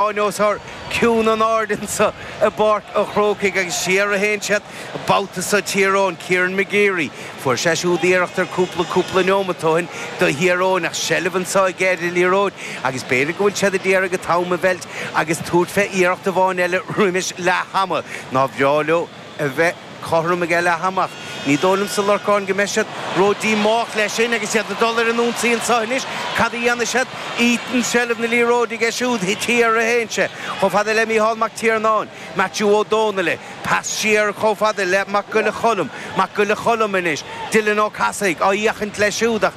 Anuas ar chiúin an aird anso i bPáirc an Chrócaigh agus siar a théann siad an babhta so, Tír Eoghain, Kieran McGeary. Fuair sé siúd iarracht ar chúpla cúpla neomat ó shin do Thír Eoghain ach seilbh anso aige ar an liathróid agus b'fhéidir go bhfuil siad ag iarraidh an t-am a mheilt agus tabhairt fé iarracht amháin eile roimis leath ama. Nár bhreá leo a bheith cothrom aige leath ama. Ní dóigh liomsa, a Lorcáin, go mbeidh siad ródhíomách leis sin agus iad ag dul ar an ionsaí anso anois. Cad a dhéanfaidh siad? Ethan, seilbh na liathróide aige siúd, siar a théann sé chomh fada le Micheál Mac Tiarnáin, Maitiú Ó Dónaill, pas siar chomh fada le Mac Giolla Cholm, Mac Giolla Cholm anois, Dylan Ó Cathasaigh ag féachaint leis siúd ach,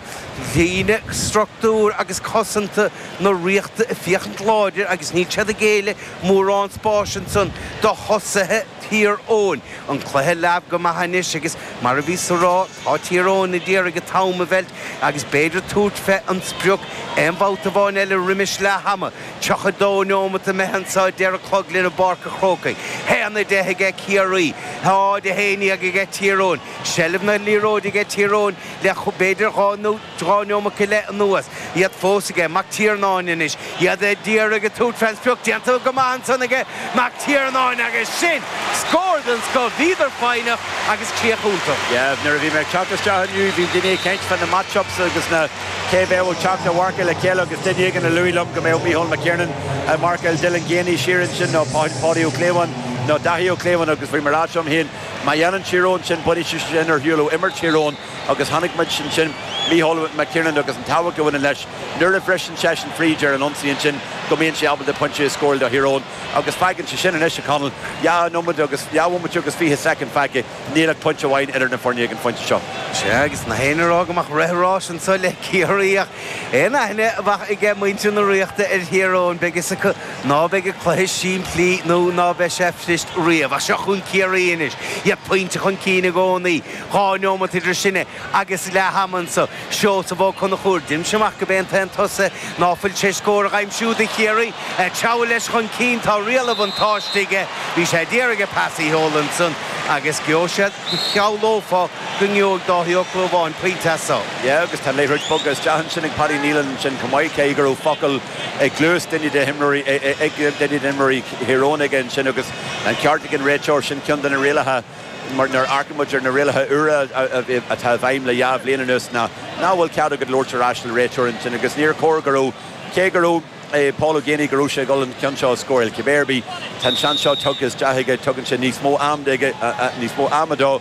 líne struchtúr agus cosanta na Ríochta ag féachaint láidir agus níl siad ag géilleadh mórán spáis ansan do thosaithe. Thír Eoghain. An cluiche leamh go maith anois agus mar a bhíos ag rá, tá Tír Eoghain ag d'iarraidh an t-am a mheilt agus b'fhéidir tabhairt fé an sprioc aon bhabhta amháin eile roimis leath ama. 32 neomat imithe anso a deir an clog linn i bPáirc a' Chrócaigh. Haon a deich aige Ciarraí. 0 a haon déag aige Tír Eoghain. Seilbh na liathróide aige Tír Eoghain le b'fhéidir dhá nó. Dhá neomat go leith anuas, iad fós aige, Mac Tiarnáin anois, iad ag d'iarraidh tabhairt ar an sprioc, déanta go maith ansan aige, Mac Tiarnáin, agus sin scór den scoth, bhíodar foighneach agus críoch iontach. Yeah, nuair a bhí mé ag teacht isteach inniu, bhí daoine ag caint fá na matchups agus na, cé a bheadh ag teacht a mharcáil le chéile agus duine éigin a luaigh liom go mbeadh Micheál McKiernan ag marcáil Dylan Geaney siar ansin nó Paudie Ó Clúmháin nó Dáithí Ó Clúmháin agus bhí mé ag rá liom féin, má dhéanann Tír Eoghain sin, bainfidh sé sin ar shiúl ó imirt Thír Eoghain. Agus chonaic muid ansin Mícheál McKiernan agus an tábhacht a bhaineann leis nuair a bhriseann seisean fríd ar an ionsaí ansin, go mbíonn sé ábalta pointe a scóráil do Thír Eoghain. Agus fágann sé sin anois, a Chonaill, dhá nóiméad agus, dhá bhomaite agus fiche soicind fágtha, níl ach pointe amháin idir na foirne ag an phointe seo. Sea, agus na héinne a rá go mbeadh rith an ráis anseo le Ciarraí ach an aithne atá aige muintir na Ríochta ar Thír Eoghain, beidh fhios acu ná beidh an cluiche simplí nó ná beidh sé fuirist riamh. Ach seo chugainn Ciarraí anois, iad pointe chun cinn i gcónaí. Dhá neomat idir sin agus leath ama anso, Seosamh Ó Conchúir, deinimse amach gurb é an t-aon tosaí ná fuil tar éis scór a aimsiú do Chiarraí. Treabhadh leis chun cinn, tá riail an bhuntáiste aige. Bhí sé ag d'iarraidh an pas a sheoladh ansan agus gheobhadh sé, shamhlófá go ngeobhaidh Dáithí Ó Clúmháin pointe as so. Yeah agus tá an liathróid bogtha isteach ansin ag Paddy Neilan ansin chomh maith, cé go raibh focal i gcluas duine de himreoirí, ag duine d'imreoirí Thír Eoghain aige ansin agus an ceart ag an réiteoir, sin ceann de na rialacha. mar nuair a amharcaimid ar na rialacha úra atá i bhfeidhm le dhá bhliain anuas ná nach bhfuil cead agat labhairt ar ais le réiteoir ansin agus níor chóir go raibh, cé go raibh Paul Geaney, go raibh sé ag dhul an ceann seo a scóráil. Cibé ar bith, tá an seans seo tugtha isteach aige, tugann sé níos mó ama aige, níos mó ama dó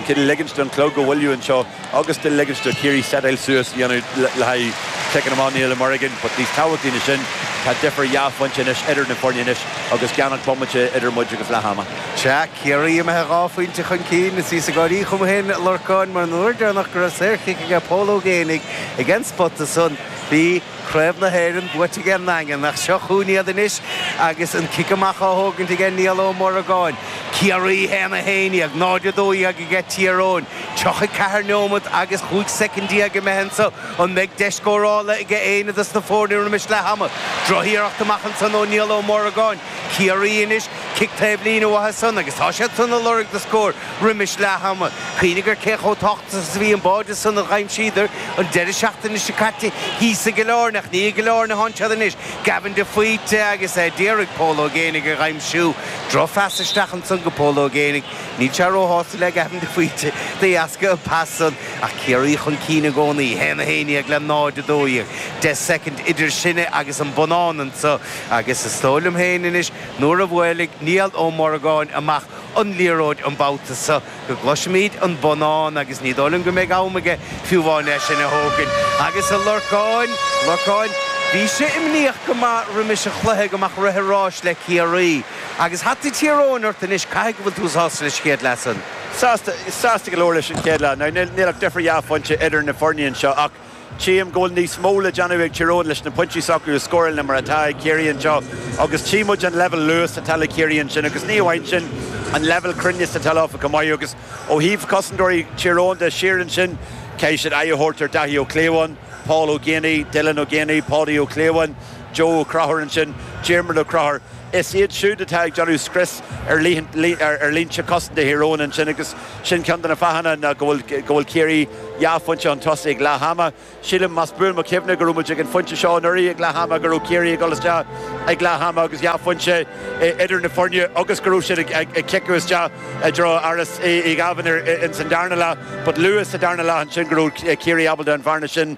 cineál ligint don chlog a mhoilliú anseo. agus de ligint do Chiarraí setail suas a dhéanamh le haghaidh ciceanna amach Niall Uí Mhorgáin, but níos tábhachtaí ná sin, tá difir dhá phointe anois idir na foirne anois agus gan ach bomaite idir muid agus leath ama. Sea, Ciarraí imithe dhá phointe chun cinn, is bhíos ag gáirí chugam féin Lorcáin mar an uair deireanach go raibh saorchic aige Pól Ó Géinigh ag an spota san, bhí, Craobh na hÉireann buaite ag an nDaingean ach seo chugainn iad anois agus an cic amach á thógaint ag Niall Ó Muireagáin. Ciarraí 1, 11, 0, 12 aige Tír Eoghain. 34 neomad agus 15 soicind imeartha anseo. An mbeidh deis scórála aige éinne dos na foirne roimis leath ama? Droch-iarracht amach ansan ó Niall Ó Muireagáin. Ciarraí anois cic taobh líne uatha san agus tá siad san a lorg do scóir roimis leath ama. Cuimhnigh ar cé chomh tábhachtach is a bhí an báide san a dh'aimsíodar an deireadh seachtaine seo caite thíos i gCill Áirne ach ní i gCill Áirne atánn siad anois. Gavin de Faoite agus é d'iarraidh Pól Ó Géinigh a dh'aimsiú. Droch phas isteach ansan go Pól Ó Géinigh. Níl sé ró shásta le Gavin de Faoite de dheasca an pas san ach Ciarraí chun cinn i gcónaí, 1-11 le 0-12 deich soicind idir sinne agus an bonnán ansan. Agus is dóigh liom féin anois, nuair a bhuailfidh Niall Ó Morgáin amach an liathróid an babhta so, go gcloisfimíd an bonnán agus ní dóigh liom go mbeidh am aige fiú amháin é sin a thógaint. Agus a Lorcáin, Lorcáin, bhís-se imníoch go maith roimis an chluiche go mbeadh rith an ráis le Ciarraí. Agus hata Thír Eoghain ort anois, caithfidh go bhfuil tú sásta leis an chéad leath san? Sásta, sásta go leor leis an chéad leath. Now níl, níl ach difir dhá phointe idir na foirne anseo ach. Tchím go bhfuil níos mó le déanamh ag Tyrone leis na pointí s'acu a scóráil ná mar atá ag Ciarraí anseo agus tchí muid an leibhéal luais atá le Ciarraí ansin agus ní amháin sin, an leibhéal cruinneas atá leo chomh maith agus ó thaobh cosantóirí Tyrone de, siar ansin caithfidh siad aghaidh a thabhairt ar Daithí Ó Clúmháin, Paul Ó Geaney, Dylan Ó Geaney, Paudie Ó Clúmháin, Joe Ó Conchúir ansin, Diarmuid Ó Conchúir. Is iad siúd atá ag déanamh scrios ar línte cosanta Thyrone ansin agus. Sin ceann de na fáthanna ná go bhfuil Ciarraí dhá phointe chun tosaigh ag leath ama. Sílim, más buan mo chuimhne, go raibh muid ag an phointe seo anuraidh ag leath ama, go raibh Ciarraí ag dul isteach ag leath ama agus dhá phointe idir na foirne agus go raibh siad ag ciceadh isteach i dtreo Ardán Uí Dhaimhín ins an darna leath. But luath sa darna leath ansin go raibh Ciarraí ábalta an bhearna sin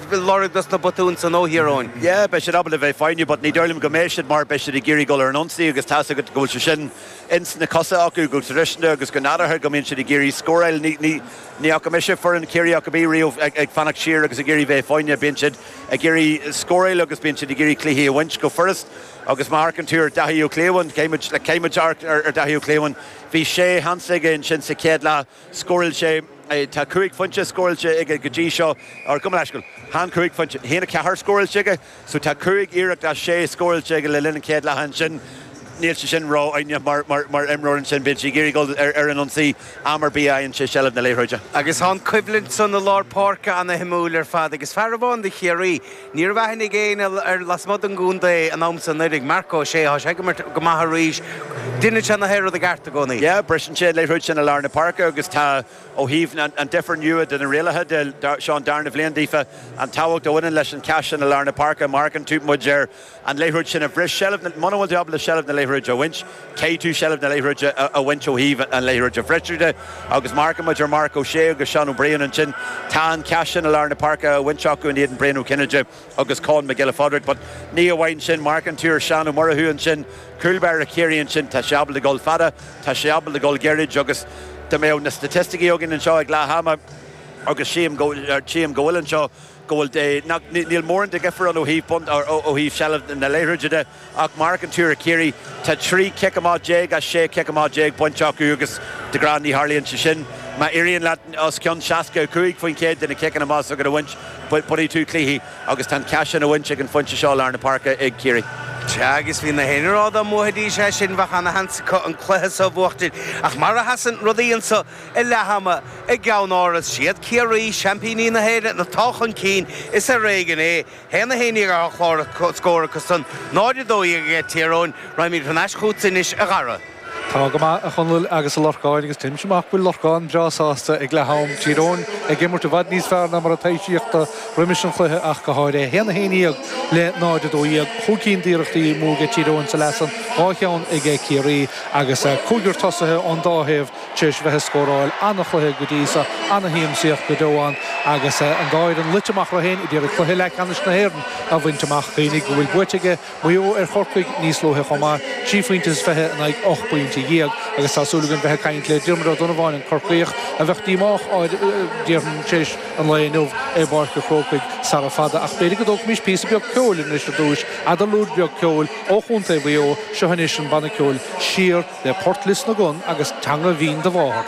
Ag lorg dos na botúin san ó Thír Eoghain. Yeah, beidh siad ábalta a bheith foighneach but ní dóigh liom go mbeidh siad mar beidh siad ag iarraidh dul ar an ionsaí agus tá's agat go bhfuil sé sin ins na cosa acu go traidisiúnta agus go nádúrtha go mbíonn siad ag iarraidh scóráil. Ní fhaca mise foireann Chiarraí ar bith riamh ag fanacht siar agus ag iarraidh bheith foighneach. Bíonn siad ag iarraidh scóráil agus bíonn siad ag iarraidh cluichí a bhaint go furast agus má amharcann tú ar Dhaithí Ó Clúmháin, caithfidh muid amharc ar Dhaithí Ó Clúmháin, bhí sé sheans aige ansin sa chéad leath, Scóráil sé Tá cúig phointe scóráilte aige go dtí seo, or gabh mo leithscéal. Chan cúig phointe. A haon a ceathair scóráilte aige. So tá cúig iarracht as sé scóráilte aige le linn an chéad leath ansin. Níl sé sin ródhona mar mar imreoir ansin. Bíonn sé ag iarraidh dul ar an ionsaí am ar bith a fhaigheann sé seilbh na liathróide. Agus tá an coimhlint san i lár páirce an-shuimiúil ar fad agus fear amháin de Chiarraí Ní raibh aithne ag éinne air lasmuigh den gcontae an t-am so anuraidh, Marc Ó Sé thá sé ag imirt go maith arís. Deineann sé na haon rud i gceart i gcónaí. Yeah, briseann sé an liathróid sin i lár na páirce agus tá, ó thaobh an difir nua de na rialacha de, seo an darna bhliain daofa, an tábhacht a bhaineann leis an cheist sin i lár na páirce, má amharcann tú, muid, ar, an liathróid sin a bhris seilbh na. Muna bhfuil tú ábalta seilbh na liathróide a bhaint, caithfidh tú seilbh na liathróide a bhaint ó thaobh an liathróid a bhriseadh de. Agus má amharcann muid ar Marc Ó Sé agus Seán Ó Briain ansin, tá an cath sin i lár na páirce á bhaint acu in éadan Brian Ó Cinnéide agus Conn Mac Giolla Phádraig. But ní amháin sin, má amharcann tú ar Seán Ó Murchú ansin, cúlbáire Chiarraí ansin, tá sé ábalta dul fada, tá sé ábalta dul gairid agus dá mbeadh na staitisticí againn anseo ag leath ama, agus sílim go bhfuil anseo, go bhfuil, nach, níl mórán de dhifear ann ó thaobh bun, ó thaobh seilbh na liathróide de ach má amharcann tú ar Chiarraí, tá 13 cic amach as 16 cic amach bainte acu agus de ghnáth ní tharlaíonn sé sin. Má éiríonn leat os cionn 65% de na ciceanna amach s'agat a bhaint, bainfidh tú cluichí agus tá an cath sin á bhaint ag an phointe seo i lár na páirce ag Ciarraí. Sea, agus bhí na héinne ag rá, dá mbuafaidís é sin, bheadh ana-sheans acu an cluiche seo a bhuachtaint. Ach mar a sheasann rudaí anseo, I leath ama, i gCeannáras, is iad, Ciarraí, seaimpíní na hÉireann atá chun cinn, is ar éigean é. A haon 11 ar chlár scór acusan, 0, 12 aige Tír Eoghain, raghaimid thar n-ais chugatsa anois, a Dhara. Tá go maith, a Chonaill agus a Lorcáin, agus déanaimse amach go bhfuil Lorcán breá sásta ag leath am, Tír Eoghain ag imirt i bhfad níos fearr ná mar a taibhsíodh roimis an chluiche ach go háirithe. A haon 11 le 0, 12, chúig cinn d'iarrachtaí amú aige Tír Eoghain sa leath san, dhá cheann aige Ciarraí, agus cúigear tosaithe ón dá thaobh, tar éis bheith ag scóráil an-chluiche go dtí so, an-shiamsaíocht go deo ann agus an dá fhoireann luite amach orthu héin ag iarraidh cluiche leathcheannais na hÉireann a bhaint amach. Cuimhnigh go bhfuil buaite aige Maigh Eo ar Chorcaigh níos luaithe chomh maith, trí phointe is fiche in aghaidh ocht bpointe déag, agus tá súil againn bheith ag caint le Diarmaid Ó Donnabháin, an Corcaíoch a bheadh díomách, déarfainn, tar éis an lae inniu i bPáirc an Chrócaigh sara fada. Ach b'fhéidir go dtógfaimis píosa beag ceoil anois ar dtúis, eadarlúid bheag ceoil ó chontae Mhaigh Eo, seo anois an banna ceoil Siar, le port Lios na gCon agus teanga bhinn do mháthar.